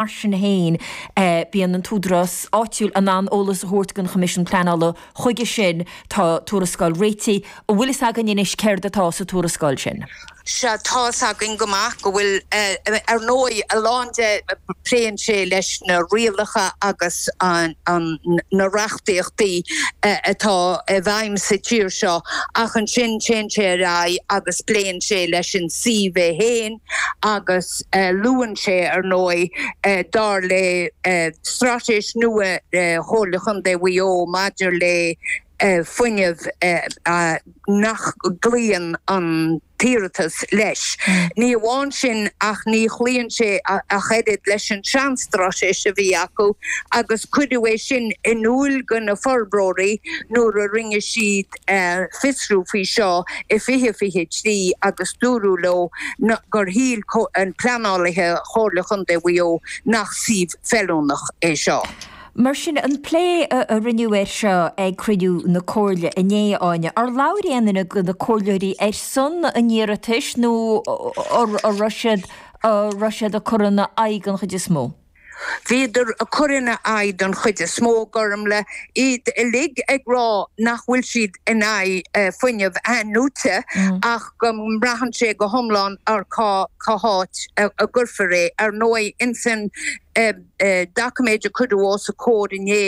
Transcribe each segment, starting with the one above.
Mar sin féin, bíonn an t-údarás áitiúil in ann eolas a thabhairt don Choimisiún Pleanála. Chuige sin, tá tuarascáil réitithe, an bhfuil fhios againn anois céard atá sa tuarascáil sin? Sea, tá fhios againn go maith go bhfuil, ar ndóigh, a lán de, pléann sé leis na rialacha agus na reachtaíochtaí atá i bhfeidhm sa tír seo, ach ansin téann sé ar aghaidh agus pléann sé leis an suíomh é féin, agus luann sé, ar ndóigh, dar le straitéis nua Chomhairle Chontae Mhaigh Eo maidir le fuinneamh nach gcloíonn an t-iarratas leis. Ní amháin sin ach ní chloíonn sé ach oiread leis an tseanstraitéis a bhí acu agus cuireadh é sin in iúl do na forbróirí nuair a rinne siad ar fiosrú faoi seo i 2023 agus dúradh leo gur shíl pleanálaithe Chomhairle Chontae Mhaigh Eo nach suíomh feiliúnach é seo. Mar sin, an plé a rinneadh air seo ag cruinniú na Comhairle inné, a Áine, ar labhair aon duine de na comhairleoirí ar son an iarratais nó an raibh siad ag cur ina aghaidh an chuid is mó? Bhíodar ag cur ina aghaidh den chuid is mó, a Ghormfhlaith, iad uilig ag rá nach bhfuil siad in aghaidh fuinneamh athnuaite ach go mbraitheann sé go hiomlán ar cá háit a gcuirfear é. Ar ndóigh, insan doiciméad a cuireadh os a gcomhair inné,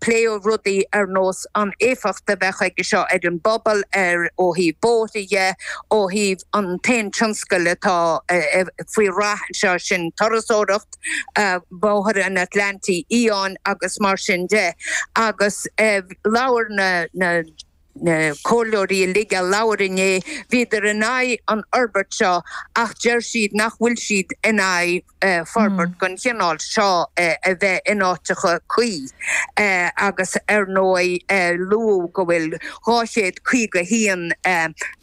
pléadh rudaí ar nós an éifeacht a bheadh aige seo ar an bpobal, ar ó thaobh bóithre dhe, ó thaobh an t-aon tionscal atá faoi rath anseo, sin turasóireacht, Bóthar an Atlantaigh Fhiáin agus mar sin de. Agus labhair na na comhairleoirí uilig a labhair inné, bhíodar in aghaidh an fhorbairt seo ach deir siad nach bhfuil siad in aghaidh, forbairt den chineál seo a bheith in áiteacha cuí agus ar ndóigh luadh go bhfuil 251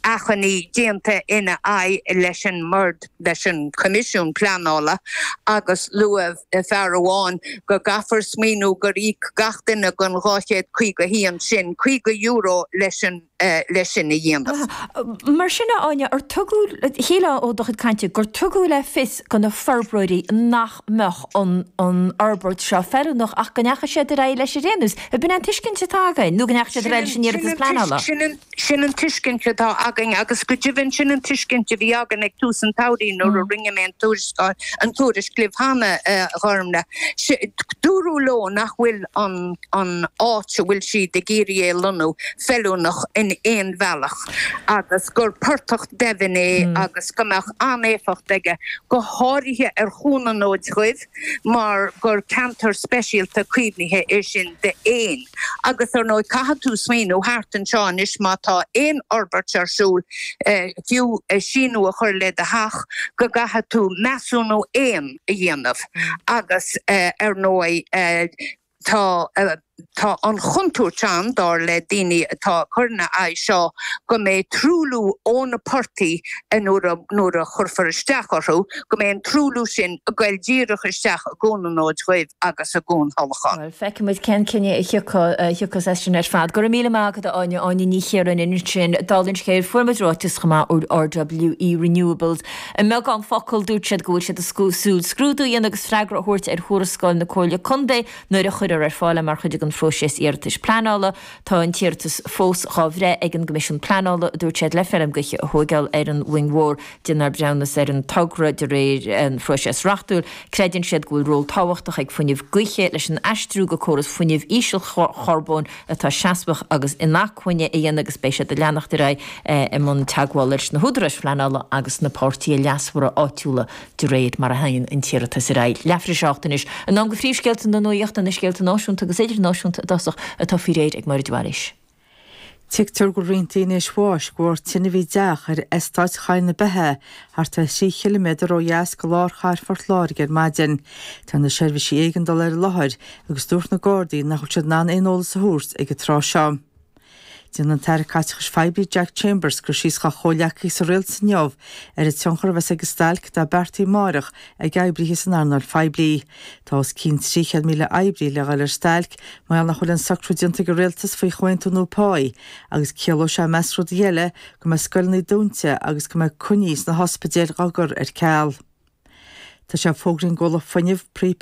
achainí déanta ina aghaidh leis an mBord, leis an gCoimisiún Pleanála agus luaigh fear amháin go gcaithfear smaoineamh gur íoc gach duine den 251 sin €50 leis an. le sin a dhéanamh. Mar sin, a Áine, ar tugadh, shílfeá ó do chuid cainte gur tugadh le fios do na forbróirí nach mbeadh an fhorbairt seo feiliúnach ach go ndeachaigh siad ar aghaidh leis ar aon nós. An b'in an tuiscint atá againn nó go ndeachaigh siad ar aghaidh leis an iarratas pleanála? Sin an tuiscint atá againn agus go deimhin sin an tuiscint a bhí againn ag tús an tsamhraidh nuair a rinne mé an tuarascáil, an tuairisc libh cheana, a Ghormfhlaith. Dúradh leo nach bhfuil an. an áit a bhfuil siad ag iarraidh é a lonnú feiliúnach in aon bhealach agus gur portach doimhin é agus go mbeadh an-éifeacht aige go háirithe ar Chuan an Fhóid Dhuibh mar gur ceantar speisialta caomhnaithe é sin d'éin agus ar ndóigh caithfidh tú smaoineamh thart anseo anois má tá aon fhorbairt ar siúl fiú síneadh a chur le do theach go gcaithfidh tú measúnú éan a dhéanamh agus ar ndóigh Tá Tá an chontúirt ann, dar le daoine atá ag cur ina aghaidh seo, go mbeidh truailliú ó na portaigh a nuair a nuair a chuirfear isteach orthu, go mbeidh an truailliú sin ag goil díreach isteach i gCuan an Fhóid Dhuibh agus i gCuan Thulacháin. Bhuel, feicfimid cén cinneadh a thiocfaidh a thiocfas as sin ar fad. Go raibh míle maith agat, a Áine, Áine Ní Chiaráin, ansin, dála an scéil, fuair muid ráiteas chomh maith ó RWE Renewables, I mbeagán focal, dúirt siad go bhfuil siad ag súil scrúdú a dhéanamh agus freagra a thabhairt ar thuarascáil na Comhairle Contae nuair a chuirfear ar fáil é mar chuid den phróiseas iarratais pleanála. Tá an t-iarratas fós dhá bhreith ag an gCoimisiún Pleanála, a dúirt siad, le feirm gaoithe a thóigeáil ar an Mhuing Mhór. Déanfar breithiúnas ar an togra de réir an phróiseas reachtúil. Creideann siad go bhfuil ról tábhachtach ag fuinneamh gaoithe leis an aistriú go córas fuinnimh ísealcharbóin, atá seasmhach agus inacmhainne a dhéanamh agus beidh siad ag leanacht ar aghaidh i mbun teagmhála leis na húdaráis phleanála agus na páirtithe leasmhara áitiúla de réir mar a théann an t-iarratas ar aghaidh. Leathuair tar éis a hocht anois in am do phríomhscéalta na nuachta, na scéalta náisiúnta agus idirnáisiúnta i dtosach atá faoi réir ag Máiréad arís. Tuigtear go bhfuil roinnt daoine tar éis bháis de bharr tine a bhí i dteach ar Eastát Choill na Beithe thart ar thrí chiliméadar ó dheas de lár chathair Phort Láirge ar maidin. Tá na seirbhísí éigeandála ar an láthair agus dúirt na Gardaí nach bhfuil siad in ann aon eolas a thabhairt ag an tráth seo. Déanfaidh an tAire Caiteachais Phoiblí Jack Chambers cur síos dá chomhghleacaithe sa Rialtas inniu ar an tionchar a bheas ag an stailc atá beartaithe amárach ag oibrithe san earnáil phoiblí. Tá os cionn 300,000 oibrí le ghoil ar stailc mar gheall nach bhfuil aon socrú déanta ag an Rialtas faoi chomhaontú nua páí agus ciallóidh sé i measc rudaí eile, go mbeidh scoileanna dúnta agus go mbeidh coinní sna hospidéil dá gcur ar ceal. Tá sé fógraithe ag an gcomhlacht fuinnimh,